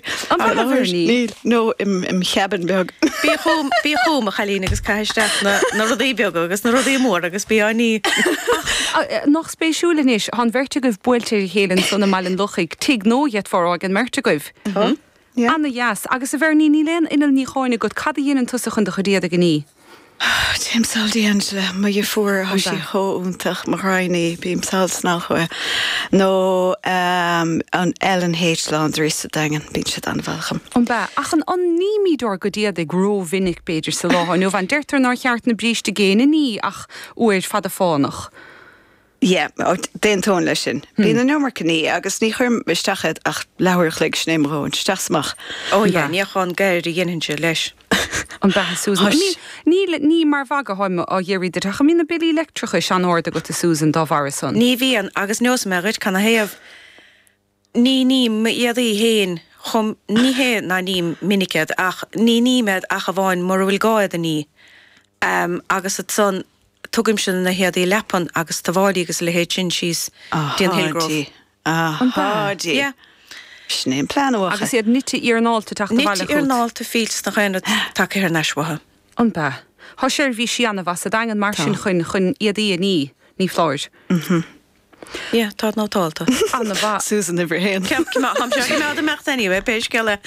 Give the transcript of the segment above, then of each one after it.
Níl, nó im cheabann beag. Bí chugam, bí chugam, a chailín, agus caith isteach na, na rudaí beaga agus na rudaí móra agus bí á ní. Ach nach spéisiúil anois, tá an bheirt agaibh buailte ar a chéile ansan i mBaile an Lochaigh, tigh nua deirtear, aige an mbeirt agaibh. Tá, yeah. Ana-dheas. Agus, a Bhernie, níl aon inneall níocháin agat, cad a dhéanann tusa chun do chuid éadaigh a ní? Téim sall dtí Angela. Mo dheirfiúr, thá sí chomh iontach. Mo ghraidhin í. Bím sall ansan chúichi. Nó an L and H Laundry sa Daingean. Bíonn siad an-mhaith chúm. An b'ea? Ach an nímíd ár gcuid éadaigh ró-mhinic, b'fhéidir, sa lá atá inniu ann? Deirtear nár cheart na bríste géine a ní ach uair fada fánach. Yeah, d'aontóinn leis sin. Bíonn an iomarca ní agus ní chuirim isteach iad ach leathuair a chloig, sin é mo dhóthain, isteach 's amach. Ó yeah, níochán gairid a dhéanann tú leis. An b'ea, a Susan. Níl, ní mar mhagadh atáim á fhiafraí duit ach an mbíonn na billí leictreachais an-ard agat a Susan dá bharra san? Ní bhíonn, agus neosfaidh mé dhuit cad 'na thaobh. Ní ním éadaí fhéin chomh, ní hé ná ním minic iad ach ní ním iad ach amháin mura bhfuil gá iad a ní. Ehm agus ansan tugaimse na héadaí leapan agus tuáillí agus a leithéid sin síos dtí an Hillgrove. Ahá dí. Yeah. Sin é an plean uatha. Agus iad nite iarnáilte teacht abhaile Nite chút. iarnáilte fillte, na haon rud tagaithe thar n-ais uathu. An b'ea. Tá seirbhís ana-mhaith sa Daingean mar sin chun chun éadaí a ní. Ní foláir. Yeah, tá nótálta. Ana mhaith. Susan uimhir a haon. Ceap cuma, chun seo a choimeád ag imeacht anyway, pé scéal é.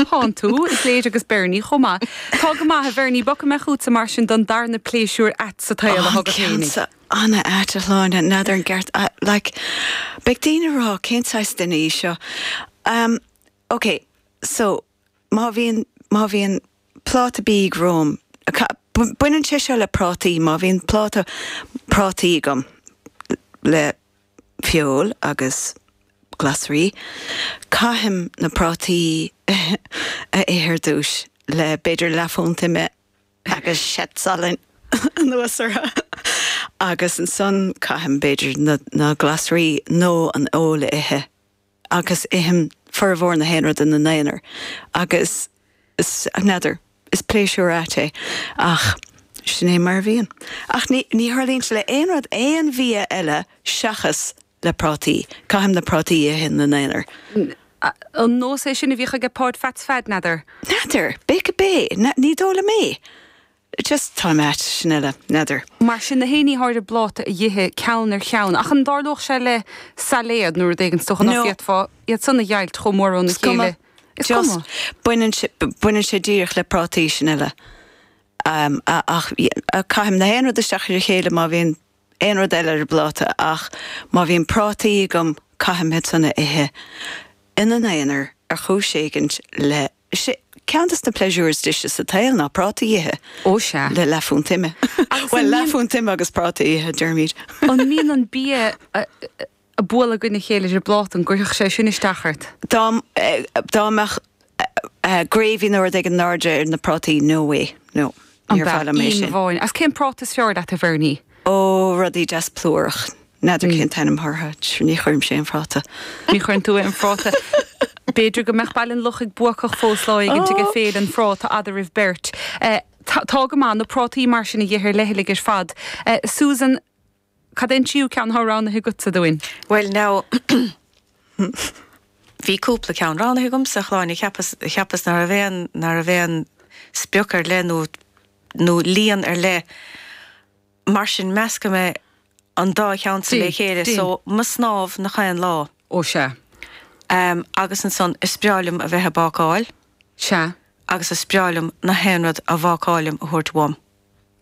Thánn tú, is léir, agus Bernie chomh maith. Tá go maith, a Bhernie, bogfaidh mé chútsa mar sin don darna pléisiúr ait sa tsaol atá agat féinig. Ana ait a Shláine, n'fheadar an gceart like beidh daoine ag rá cén saghas duine í seo. Umm ok so. Má bhíonn, má bhíonn pláta bídh romham, baineann sé seo le prátaí, má bhíonn pláta prátaí agam le feoil agus glasraí, caithim na prátaí a ithe ar dtús le b'fhéidir leathphunt ime agus seat salainn anuas orthu agus ansan caithim b'fhéidir na glasraí nó an fheoil a ithe. agus ithim formhór na haon rud ina n-aonar agus n'fheadar, is pléisiúr ait é ach sin é mar a bhíonn. Ach ní tharlaíonn sé le haon rud, aon bhia eile seachas le prátaí, caithim na prátaí a ithe ina n-aonar. An nós é sin a bhíodh aige Páid Pheats Pheaid, n'fheadar? N'fheadar! B'fhéidir gurb é, ní dóigh liom é. Just tá mé ait sin eile, n'fheadar. Mar sin na hé ní hearraí ar do phláta a dh'ithe ceann ar cheann, ach an dtarlódh sé le sailéad nó rud éigin, is dócha ná No. An bhféadfá iad san a dheighilt chomh mór óna Is cuma. chéile. Is cuma. Just baineann sé, baineann sé díreach le prátaí sin eile. Ach caithim nach aon rud isteach ar a chéile má bhíonn aon rud eile ar an bpláta ach má bhíonn prátaí agam caithim iad san a ithe ina n-aonar ar chúis éigint le Is é ceann de na pléisiúir is deise sa tsaol ná prátaí a ithe. Ó sea. Le leathphunt ime. Agus an Bhuel, mbíonn. leathphunt ime agus prátaí a ithe, deirimid. An mbíonn an bia ag bualadh i gcoinne a chéile id phláta an gcuirfeadh sé sin isteach ort? Dá dá mbeadh gravy nó rud éigin in airde ar na prátaí, no way, no. Níor mhaith liom é sin. Agus cén práta is fearr leat, a Bhernie? Ó, rudaí deas plúracha. N'fheadar cén t-ainm atá orthu, ní chuirimse aon phráta. Ní chuireann tú aon phráta. B'fhéidir go mbeadh Baile an Lochaigh buacach fós lá éigin i bhFéile an Phráta eadraibh beirt. Tá go maith, na prátaí mar sin a dh'ithe ar leithligh ar fad. Susan, cad é an tríú ceann atá roghnaithe agatsa dúinn? Bhuel now, bhí cúpla ceann roghnaithe agamsa, a Shláine, cheapas, cheapas ná raibh aon, ná raibh aon sprioc ar leith nó, nó líon ar leith, mar sin meascfaidh mé an dá cheann san le chéile so, mo snámh nach aon lá. Ó sea. Em, agus ansan, is breá liom a bheith a' bácáil. Sea. Agus is breá liom nach aon rud a bhácáilim a thabhairt uaim.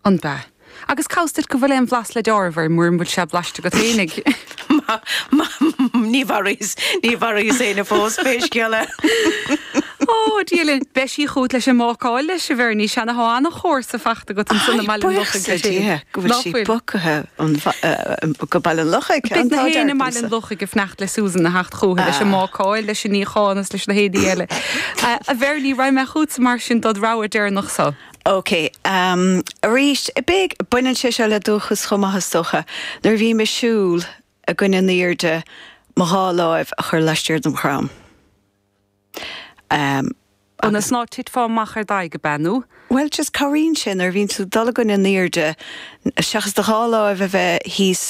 Ab ea? Agus cá bhfios duit go bhfuil aon bhlas le dealramh air, mura bhfuil sé blaiste agat féinig. Má, má, ní mharaíos, ní mharaíos éinne fós, pé scéal é. Ó, Dia linn. Beidh sí chugat leis an mbácáil leis, a Bhernie. Sea anois, tá an-chomharsa fachta agat ansan i mBaile an Lochaigh is ea san. Buíochas le Dia go bhfuil sí bogtha go Baile an Lochaigh. Beidh nach aoinne i mBaile an Lochaigh ag fanacht le Susan a theacht chucu leis an mbácáil, leis an níochán is leis na héadaí eile. A Bhernie, raghaidh mé chugatsa mar sin dod' rogha deireanach seo. OK. Arís, baineann sé seo le dúchas chomh maith, is dócha. Nuair a bhím ag siúl i gcoinne an aoirde, mo dhá láimh a chur laistiar dem dhrom. Ionas ná titfeá amach ar d'aghaidh, ab ea? No. Bhuel, just cabhraíonn sé nuair a bhíonn tú ag dul i gcoinne an airde, seachas do dhá láimh a bheith thíos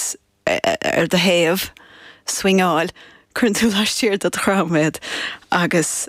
ar do thaobh, ag swingeáil, cuireann tú laistiar de do dhrom iad agus.